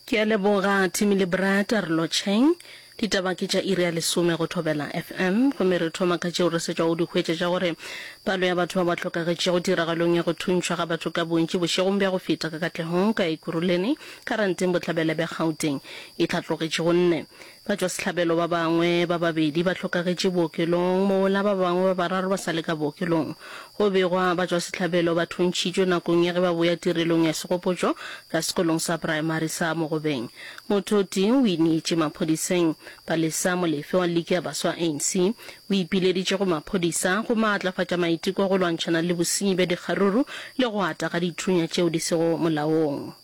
Ke a leboga Timmy le Brad re lo tšheng. Ditaba ke tša iri ya lesome go Thobela FM. Gomme re thoma ka tšeo re setšwago di hwetša tša gore palo ya batho ba ba hlokagetšego tiragalong ya go thuntšhwa ga batho ka bontši bošegong bja go feta ka Katlehong ka Ekurhuleni, Karanteng, Bohlabela bja Gauteng e hlatlogetše go nne. Batšwasehlabelo ba bangwe ba babedi ba hlokagetše bookelong, mola ba bangwe ba bararo ba sa le ka bookelong. Go begwa, batšwasehlabelo ba thuntšhitšwe nakong ya ge ba boya tirelong ya segopotšo ka sekolong sa praemari sa Mogobeng. Motho o tee o ineetše maphodiseng. Palesa Molefe wa Liki ya Baswa ya ANC o ipileditše go maphodisa go maatlafatša maiteko a go lwantšhana le bosenyi bja dikgaruru le go ata ga dithunya tšeo di sego molaong.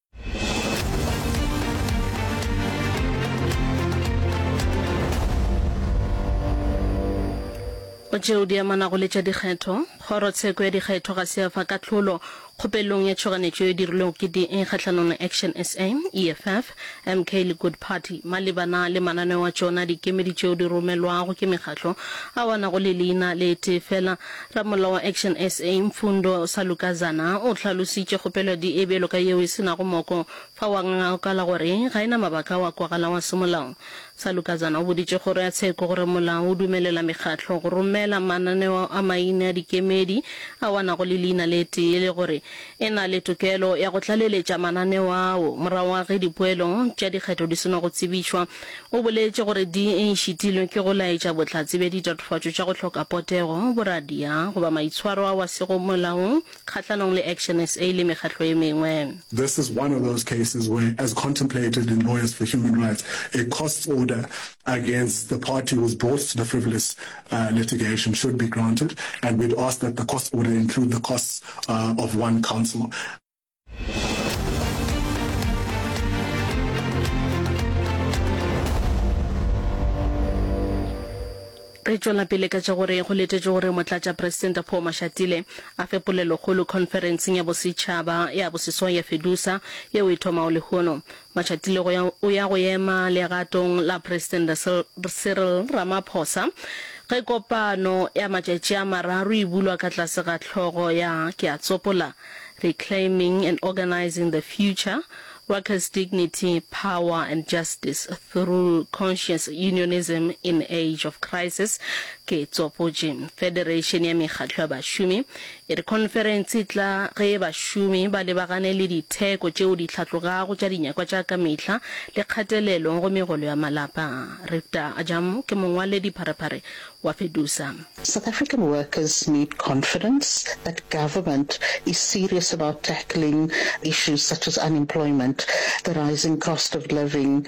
go tšeo di amanago le tša dikgetho kgorotsheko ya dikgetho ga se ya fa kahlolo kgopelong ya tšhoganetšo e dirilwego ke da kgahlanong le action sa eff mk le good party malebana le mananeo a tšona dikemedi tšeo di romelwago ke mekgatlo a wanago le leina le tee fela Ramollo wa Action SA, Mfundo Salukazana, o hlalositše kgopelo ya DA bjalo ka yeo e se nago moko fao a ngangakala gore ga e na mabaka ao a kwagalago a semolao. Salukazana o boditše kgoro ya tsheko gore molao o dumelela mekgatlo go romela mananeo a maine a dikemedi ao a nago le leina le tee le gore e na le tokelo ya go tlaleletša mananeo ao morago ga ge dipoelo tša dikgetho di seno go tsebišwa. O boletše gore di šitilwe ke go laetša bohlatse bja ditatofatšo tša go hloka potego, boradia goba maitshwaro ao a sego molaong kgahlanong le Action SA le mekgatlo e mengwe. This is one of those cases where, as contemplated in Lawyers for Human Rights, a costs order against the party who has brought the frivolous litigation should be granted and we'd ask that the cost order include the costs of one counsel. re tšwela pele ka tša gore go letetše gore motlatša presidente paul mashatile a fe polelokgolo conferenceng ya bosetšhaba ya boseswai ya fedusa yeo e thomago lehono Matšatilego o ya go ema legatong la Presidente Cyril Ramaphosa ge kopano ya matšatši a mararo e bulwa ka tlase ga hlogo ya Ke a Tsopola, Reclaiming and Organizing the Future, Workers' Dignity, Power and Justice Through Conscious Unionism in Age of Crisis, Ke Tsopotše. Federation ya Mekgatlo ya Bašomi E re khonferense e tla ge bašomi ba lebagane le ditheko tšeo di hlatlogago tša dinyakwa tša ka mehla le kgatelelo go megolo ya malapa. Rifta Ajam ke mongwaledi pharephare wa Fedusa. South African workers need confidence that government is serious about tackling issues such as unemployment, the rising cost of living,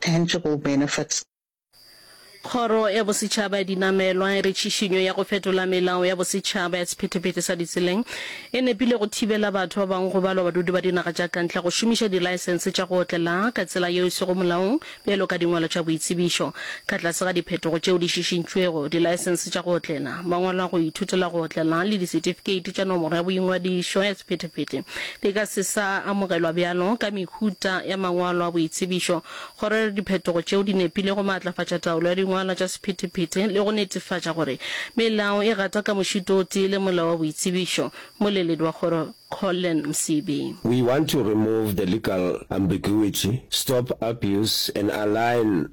tangible benefits. Kgoro ya Bosetšhaba ya Dinamelwa e re tšhišinyo ya go fetola melao ya bosetšhaba ya sephethephethe sa ditseleng e nepile go thibela batho ba bangwe go balwa badudi ba dinaga tša kantle go šomiša dilaesense tša go otlela ka tsela yeo e sego molaong bjalo ka dingwalo tša boitsebišo. Ka tlase ga diphetogo tšeo di šišintšwego, dilaesense tša go otlela, mangwalo a go ithutela go otlela le disetifikeiti tša nomoro ya boingwadišo ya sephethephethe Di ka se sa amogelwa bjalo ka mehuta ya mangwalo a boitsebišo. Go rera diphetogo tšeo di nepile go maatlafatša taolo ya dingwalwa tša sephethephethe le go netefatša gore melao e gata ka mošito o tee le Molao wa Boitsebišo, Moleledi wa Kgoro Collen Msibi. We want to remove the legal ambiguity, stop abuse and align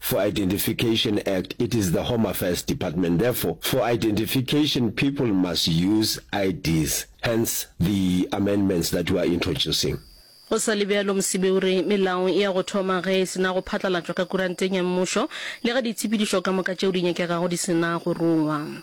For Identification Act, it is the Home Affairs Department. Therefore, for identification people must use IDs, hence the amendments that we are introducing. Go sa le bjalo, Msibi o re melao e ya go thoma ge e se na go phatlalatšwa ka kuranteng ya mmušo le ge ditshepedišo ka moka tšeo di nyakegago di se na go rongwa.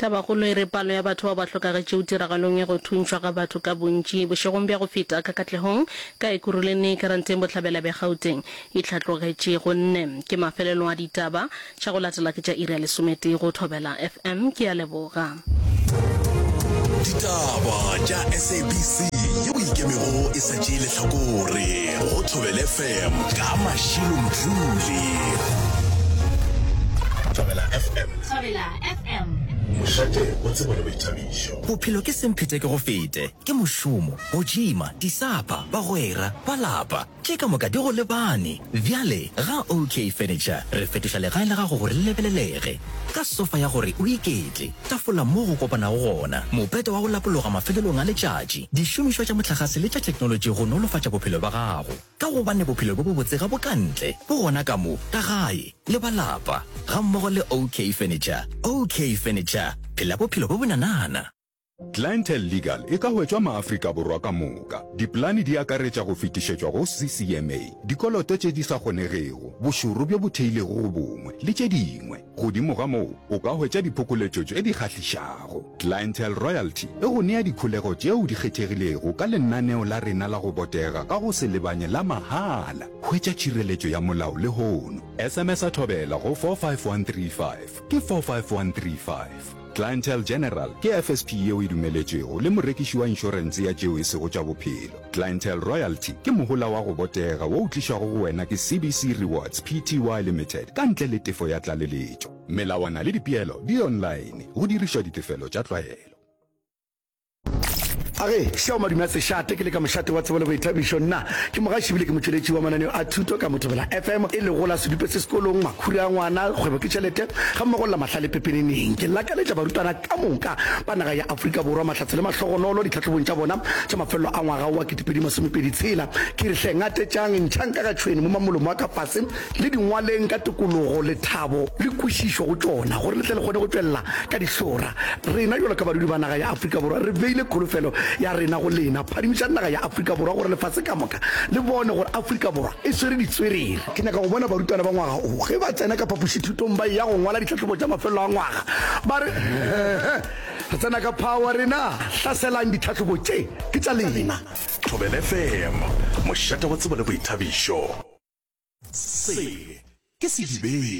Tabakgolo e re palo ya batho bao ba hlokagetšego tiragalong ya go thuntšhwa ga batho ka bontši bošegong bja go feta ka Katlehong, ka Ekurhuleni, Karanteng Bohlabela bja Gauteng e hlatlogetše. Go nne ke mafelelong a ditaba tša go latela ke tša iri ya lesometee go Thobela FM. Ke a leboga. Ditaba tša SABC yeo e ikemego e sa tšee lehlakore go Thobel FM ka Mashilo Mdluli. Thobela FM. Mošate o tseba le boithabišo. Bophelo ke semphetekegofete, ke mošomo, go tšima, disapa, bagwera, ba lapa. Tše ka moka di go lebane. Bjale ga OK Furniture re fetoša legae la gago gore le lebelelege. Ka sofa ya gore o iketle, tafola moo go kopanago gona, mopete wa go lapologa mafelelong a letšatši, dišomišwa tša mohlagase le tša theknolotši go nolofatša bophelo bja gago. Ka gobane bophelo bjo bobotse ga bo ka ntle, bo gona ka mo, ka gae, le ba lapa, gammogo le OK Furniture. OK Furniture, phela bophelo bjo bonanana! Clientele Legal e ka hwetšwa maAfrika Borwa ka moka. Dipolane di akaretša go fetišetšwa go CCMA, dikoloto tše di sa kgonegego, bošoro bjo bo theilego go bongwe, le tše dingwe. Godimo ga moo, o ka hwetša diphokoletšo tše di kgahlišago. Clientele Royalty e go nea dikholego tšeo di kgethegilego ka lenaneo la rena la go botega ka go se lebanye la mahala. Hwetša tšhireletšo ya molao lehono. SMS-a Thobela go 45135, ke 45135. Clientele General ke FSP yeo e dumeletšwego le morekiši wa inšorense ya tšeo e sego tša bophelo. Clientele Royalty ke mohola wa go botega wo o tlišwago go wena ke CBC Rewards Pty Limited ka ntle le tefo ya tlaleletšo. Melawana le dipeelo di online go dirišwa ditefelo tša tlwaelo. a re šao madume a sešate ke le ka mošate wa tsebo le boithabišo nna ke mogaši bile ke motšweletši wa mananeo a thuto ka mothobela fm e lego la sedupe se sekolong makhuri a ngwana kgwebo ke tšhelete ga mmogo lla mahlale pepeneneng ke lakaletša barutwana ka moka ba naga ya aforika borwa mahlatse le mahlogonolo ditlhatlhobong tša bona tša mafelelo a ngwaga wa ketepedi masomepedi tshela ke re hle ngatetšang ntšhang ka ga tšhwene mo mamolomo wa ka fase le di ngwaleng ka tokologo, lethabo le kwešišo go tšona gore le tle le kgone go tšwelela ka dihlora. Rena bjalo ka badudi ba naga ya Afrika Borwa re beile kholofelo ya rena go lena. Phadimišang naga ya Afrika Borwa gore lefase ka moka le bone gore Afrika Borwa e swere ditswerere. Ke nyaka go bona barutwana ba ngwaga o ge ba tsena ka phapošithutong ba eya go ngwala ditlhahlobo tša mafelelo a ngwaga ba re, He-he, re tsena ka phawa rena, hlaselang ditlhahlobo tše, ke tša lena. Thobela FM, mošate wa tsebo le boithabišo. Se ke sedibeng.